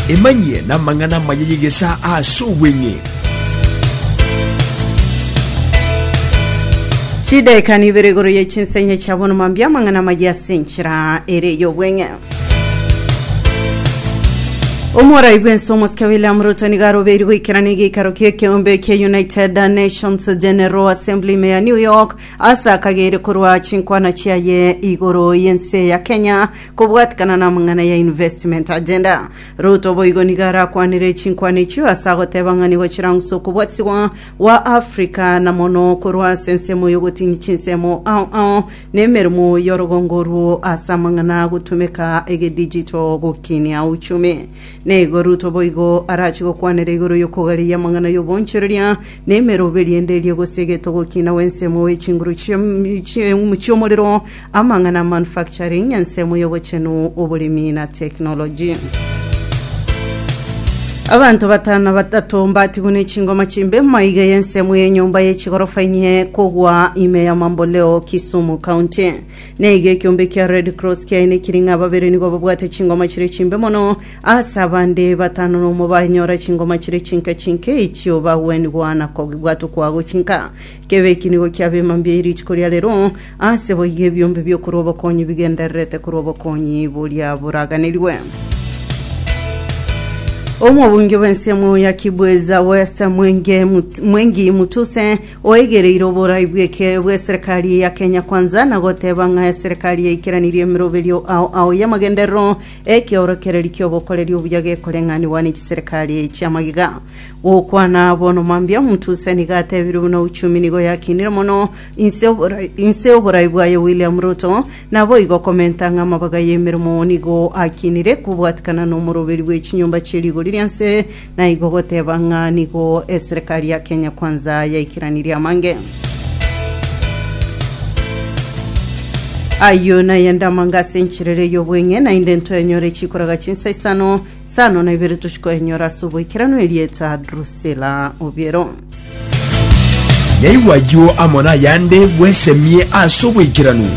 emanyie n'amang'ana amaya y'egesaa ase obweng'e chidaeka nibere igoro ye chinsa enye chia bono mambia amang'ana amaya ase enchera ere y'obweng'e omorai bwense omosike william ruto nigo arobeiri goikerana egeikaro ki'ekeombe kia united nations general assembly ime ya new york Ase akagere korwa chinkwana chiaye igoro y'ense ya Kenya kobwatikana namang'ana ya Investment Agenda, Ruto boigo nigo arakwanere chinkwana echio ase agoteba ng'a nigo chirangusa okobwatisibwa gwa Africa na mono korwa ase ensemo y'ogotinyia chinsemo ao ao nemeremo y'orogongo oruo ase amang'ana agotumeka egedijito gokinia uchumi. Nigo Ruto boigo arache gokwanera igoro y'okogareyia amang'ana y'obonchoreria na emerobe riende eria egosegetwa gokina gw'ensemo gwe chinguru chi'em- chi'em- chi'omorero, amang'ana manufacturing, ensemo y'obochenu, oboremi na technology. Abanto batano na batato mbatigwe ne chingoma chimbe maiga y'ensemo y'enyomba ye chigorofa inye kogwa ime ya Mamboleo, Kisumu County. Naiga ekiombe kia Red Cross kiaye nekiring'a ababere nigo babwate chingoma chire chimbe mono Ase abande batano nomo banyora chingoma chire chinke chinke echio bagwenigwa na kogigwa tokwa gochinka. Kebe eki nigo kiabe mambia ye rituko ria rero, ase boigo ebiombe biokorwa obokonyi bigendererete korwa obokonyi boria boraganirwe. Omobunge bw'ense emo ya Kibweza West Mwenge Mut- Mwengi Mutuse oegereire oborai bw'eke- bw'eserekari ya Kenya Kwanza na goteba ng'a eserekari yaikeranirie emeroberio ao ao y'amagenderero Ekeorokererio ki'ogokoreria obuya gekoreng'anigwa ne chiserekari echi amagega. Gokwana bono mambia omonto ose nigo atebire buna uchumi nigo yakinire mono inse oborai, inse oborai bwaye William Ruto naboigo komenta ng'a amabaga y'emeremo nigo akinire kobwatikana nomoroberi bwe chinyomba chie rigori rianse Naigo goteba ng'a nigo eserekari ya Kenya Kwanza yaikeranirie amange. Ayio nayende amanga ase encherere y'obweng'e, naende ntoyanyore chikoraga chinsa isano, isano na ibere tochikoyanyora ase oboikeranu erieta Drusilla Obiero. Yaigwa ayio amo nayande bwesemie ase oboikeranu.